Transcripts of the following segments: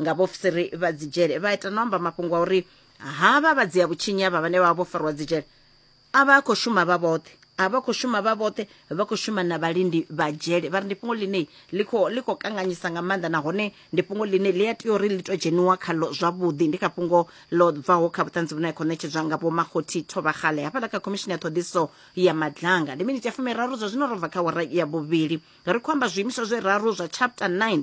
nga vhofisiri vha dzidzhele vha ita no amba mafhungo a uri havha vha dzia vhutshinyi avha vhane vha vha vho fariwa dzidzhele a vha a khou shuma vha vhoṱhe a vha khou shuma vha vhoṱhe vha khou shuma na vhalindi vha dzhele vha ri ndi fhungo ḽine ḽi khou ḽi khou kanganyisa nga maanḓa nahone ndi fhungo ḽine ḽi a tea uri ḽi to dzheniwa khalo zwavhuḓi ndi kha fhungo ḽo bvaho kha vhuṱanzi vhune khou ṋetshedzwa nga vhomakhothi thovhagale hafhaḽa kha khomishini ya ṱhoḓiso ya madlanga ndi miniti ya fumiraru zwa zwino ro bva kha wara ya vhuvhili ri khou amba zwiimiswa zwe raru zwa chapter 9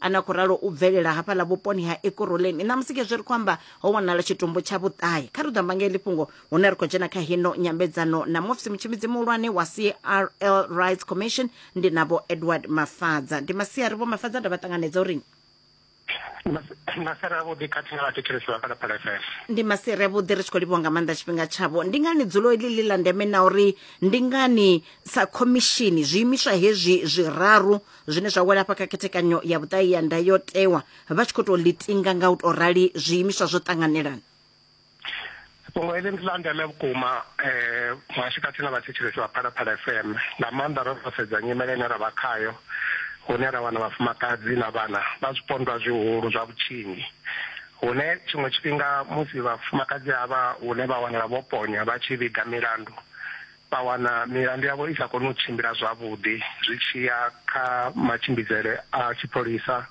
a na khou ralo u bvelela hafhaḽa vhuponi ha ekuroleni ṋamusi khezwi ri khou amba ho wanala tshitumbu tsha vhuṱahe kha ri ḓo amba nga heḽi fhungo hune ri khou dzhena kha hino nyambedzano na mufisi mutshimbidzi muhulwane wa crl rights commission ndi na vho edward mafadza ndi masiari vho mafadza nda vha ṱanganedza uri masere avhuḓi khathihi na vhathetshelesi vha phalaphala fm ndi masere avhuḓi ri tshi khou livhiwa nga maanḓa tshifhinga tshavho ndi ngani dzulo iḽi ḽi ḽa ndeme na uri ndi ngani sa khomishini zwiimiswa hezwi zwiraru zwine zwa wela hafha kha khethekanyo ya vhuṱahi ya ndayotewa vha tshi khou tou ḽitinga nga u tou rali zwiimiswa zwo ṱanganelana fhungo heḽi ndi ḽa ndeme vhukuma um muhashi khathihi na vhathetshelesi vha phalaphala fm nga maanḓa ro ro sedza nyimele ine ra vha khayo hune ra wana vhafumakadzi na vhana vha zwipondwa zwihulu zwa vhutshinyi hune tshiṅwe tshifhinga musi vhafumakadzi havha hune vha wanala vho ponya vha tshi vhiga milandu vha wana milandu yavho i sa koni u tshimbila zwavhuḓi zwi tshi ya kha matshimbidzele a tshipholisa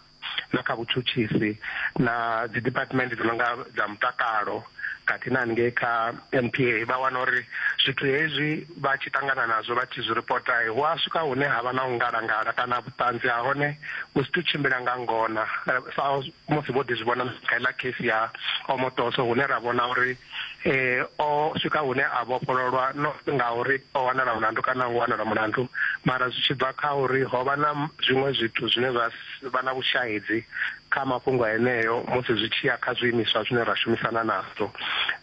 na kha vhutshutshisi na dzi department dzi no nga dza mutakalo khathihi na haningei kha NPA vha wana uri zwithu hezwi vha tshi ṱangana nazwo vha tshi zwi ripota hu a swika hune ha vha na u ngalangala kana vhuṱanzi ha hone vhu si tu tshimbila nga ngona sa musi vho ḓi zwi vhona kha iḽa case ya omotoso hune ra vhona uri o swika hune a vhofhololwa not ngauri o wanala mulandu kana u wanala mulandu mara zwi tshi bva kha uri ho vha na zwiṅwe zwithu zwine zwa vha na vhushahidzi kha mafhungo eneo musi zwi tshi ya kha zwiimiswa zwine ra shumisana nazwo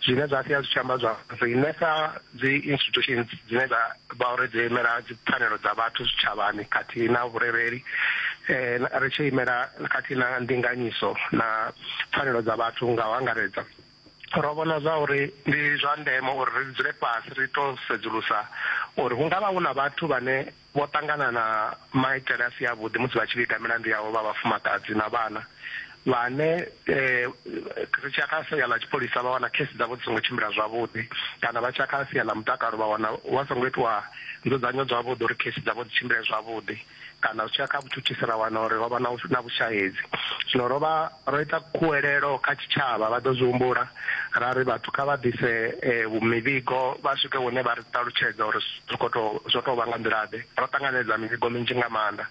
zwine zwa sia zwi tshi amba zwa riṋe sa dzi institutions dzine dza vha uri dzi imela dzi pfanelo dza vhathu zwitshavhani khathihi na vhurereli um ri tshi imela khathihi na ndinganyiso na pfanelo dza vhathu nga u angaredza Ro vhona zwa uri ndi zwa ndeme uri ri dzule fhasi ri tou sedzulusa uri hu nga vha hu na vhathu vhane vho ṱangana na maitele a si avhuḓi musi vha tshi vhiga milandu yavho vha vhafumakadzi na vhana vhane ri tsha kha sia ḽa tshipholisa vha wana khesi dzavho dzi songo tshimbila zwavhuḓi kana vha tsha kha sia ḽa mutakalo vha wana wa songo itiwa nzudzanyo dzavhuḓi uri khesi dzavho dzi tshimbile zwavhuḓi. kana zwi tshi ya kha vhutshutshisi ra wana uri rovha na na vhushahedzi zwino rovha ro ita khuwelelo kha tshitshavha vha ḓo zwi humbula ra ri vhathu kha vha ḓise eh, mivhigo vha swike hune vha ri ṱalutshedza uri zwi kho to zwo to vha nga nḓila ḓe ro ṱanganedza mivhigo minzhi nga maanḓa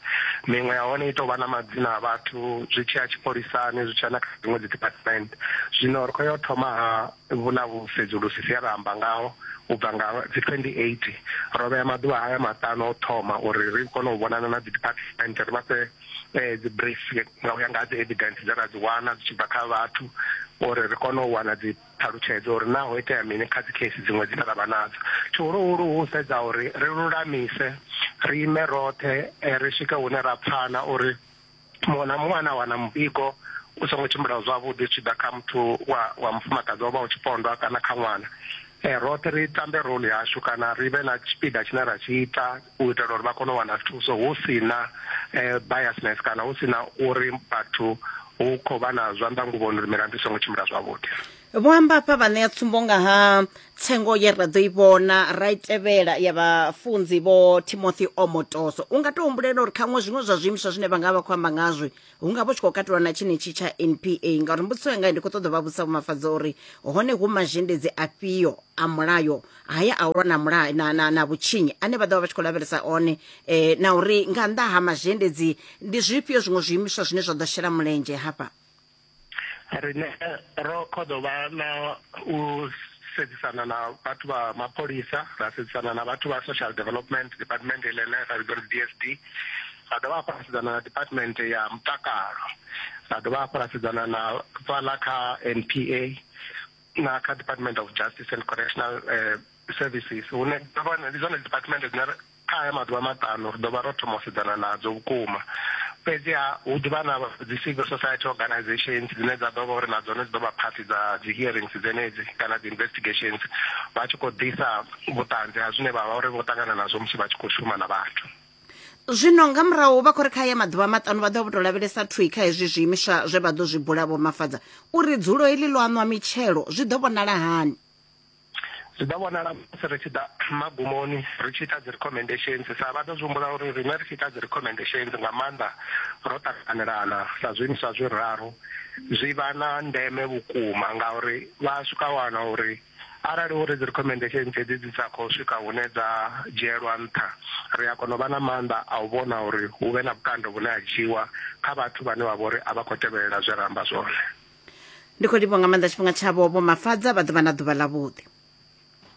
miṅwe ya hone i tou vha na madzina a vhathu zwi tshi ya tshipholisani zwi tshi ya na kha dziṅwe dzi department zwino ri khou yo thoma ha Vhu na vhusedzulusi zwe ra amba ngaho u bva nga dzi 2018. Ro vhea maḓuvha haya maṱanu a u thoma uri ri kone u vhonana na dzidiphathimenthe ri vha fhe dzi brief nga u ya nga ha dzi evidence dze ra dzi wana dzi tshi bva kha vhathu uri ri kone u wana dzi ṱhalutshedzo uri naa ho itea mini kha dzi case dziṅwe dzine ra vha nadzo. Tshihuluhulu hu u sedza uri ri lulamise, ri ime roṱhe ri swike hune ra pfana uri. muṅwe na muṅwe ane a wana muvhigo u songo tshimbila zwavhuḓi zwi tshi ḓa kha muthu wa wa mufumakadzi wa vha u tshipondwa kana kha ṅwana um roṱhe ri tambe role yashu kana ri vhe na tshipiḓa tshine ra tshi ita u itela uri vha kone u wana thuso hu si na um biasness kana hu si na uri vhathu hu khou vha na zwanḓa nguvhoni uri milandu i songo tshimbila zwavhuḓi vho amba hafha vha ṋea tsumbo nga ha tsengo ye ra ḓo i vhona ra i tevhela ya vhafunzi vho timothy omotoso u nga to humbulela uri khaṅwe zwiṅwe zwa zwiimiswa zwine vha nga vha khou amba ngazwi hu nga vho tshi khou katelwa na tshenetshi tsha npa ngauri mbudziso yanga ndi khou ṱoḓa vha vhusa vhumafhadza uri hone hu mazhendedzi afhio a mulayo haya a u lwa na mulayo na, na, na vhutshinyi ane vha ḓo vha vha tshi khou lavhelesa one eh, na uri nga nnḓa ha mazhendedzi ndi zwifhio zwiṅwe zwiimiswa zwine zwa ḓo shela mulenzhe hafha Riṋe ro khoḓo vha na u sedzisana na vhathu vha mapholisa, ra sedzisana na vhathu vha social development department iḽa ine ra vhidza uri D_S_D, ra dovha hafhu ra sedzana na department ya mutakalo, ra dovha hafhu ra sedzana na fhaḽa kha N_P_A na kha department of justice and correctional services hune ndi zwone department dzine ra Kha haya maḓuvha maṱanu ri ḓo vha ro thoma u sedzana nadzo vhukuma. Fhedzi-ha, hu ḓi vha na dzi civil society organisations dzine dza ḓo vha uri na dzone dzi ḓo vha phathi dza dzi hearings dzenedzi kana dzi investigations vha tshi khou ḓisa vhuṱanzi ha zwine vha vha uri vho ṱangana nazwo musi vha tshi khou shuma na vhathu. Zwino nga murahu vha khou ri kha haya maḓuvha maṱanu vha ḓo vha vho tou lavhelesa thwii kha hezwi zwiimiswa zwe vha ḓo zwi bula, Vho Mafadza, uri dzulo heḽi ḽo aṋwa mitshelo zwi ḓo vhonala hani. Zwi ḓo vhonala musi ri tshi ḓa magumoni ri tshi ita dzi recommendations sa vha ḓo zwi humbula uri riṋe ri tshi ita dzi recommendations nga maanḓa ro ṱanganelana sa zwiimiswa zwiraru zwi vha na ndeme vhukuma ngauri vha swika wana uri arali uri dzi recommendations hedzi dzi sa khou swika hune dza dzhielwa nṱha ri a kona u vha na maanḓa a u vhona uri hu vhe na vhukando vhune ha dzhiwa kha vhathu vhane vha vha uri a vha khou tevhelela zwe ra amba zwone. ndi khou livho nga maanḓa tshifhinga tshavho vho mafadza vha ḓovha na ḓuvha ḽa vhuḓi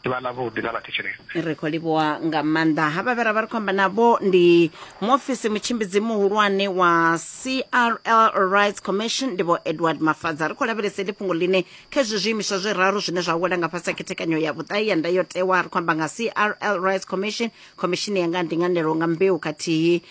ḓuvha ḽa vhuḓi ḽa vhathetshelesi ri khou livhowa nga maanḓa ha vha vhera vha ri khou amba navho ndi muofisi mutshimbidzi muhulwane wa crl rights commission ndi vho edward mafadza ri khou lavhelesa ndi fhungo ḽine kha izwi zwiimiswa zwi raru zwine zwa wela nga fhasi ha khethekanyo ya vhuṱahi ya ndayotewa ri khou amba nga crl rights commission khomishini ya nga ndinganelo nga mbeu khathihi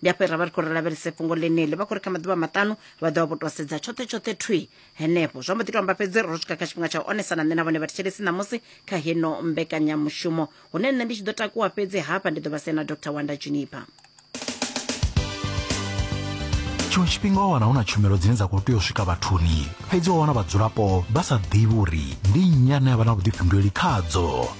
ndi afho ra vha ri khou ri lavhelese fhungo ḽeneḽi vha khou ri kha maḓuvha maṱanu vha ḓovha vho tou sedza tshoṱhe tshoṱhe thwi henefho zwa mbo ḓi to amba fhedzi ro swika kha tshifhinga tsha u onesa na nṋe na vhone vhathetshelesi ṋamusi kha heno mbekanyamushumo hune nṋe ndi tshi ḓo takuwa fhedzi hafha ndi ḓo vha sia na dr wanda juniper tshiṅwe tshifhinga wa wana hu na tshumelo dzine dza khou tea u swika vhathuni fhedzi wa wana vhadzulapo vha sa ḓivhi uri ndi nnyi ane a vha na vhuḓifhinduleli khadzo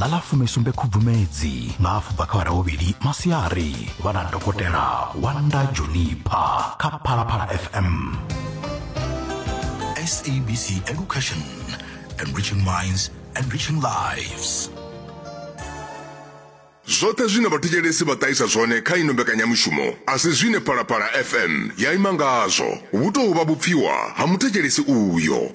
ḽa ḽa fumesumbe khubvumedzi nga afho bva kha vhara vhuvhili masiari vha na dokotela wanda junipha kha phalaphala fm sabc education enriching minds enriching lives zwoṱhe zwine vhathetshelesi vha ṱahisa zwone kha ino mbekanyamushumo a si zwine phalaphala fm ya ima ngazwo hu tou vha vhupfiwa ha muthetshelesi uyo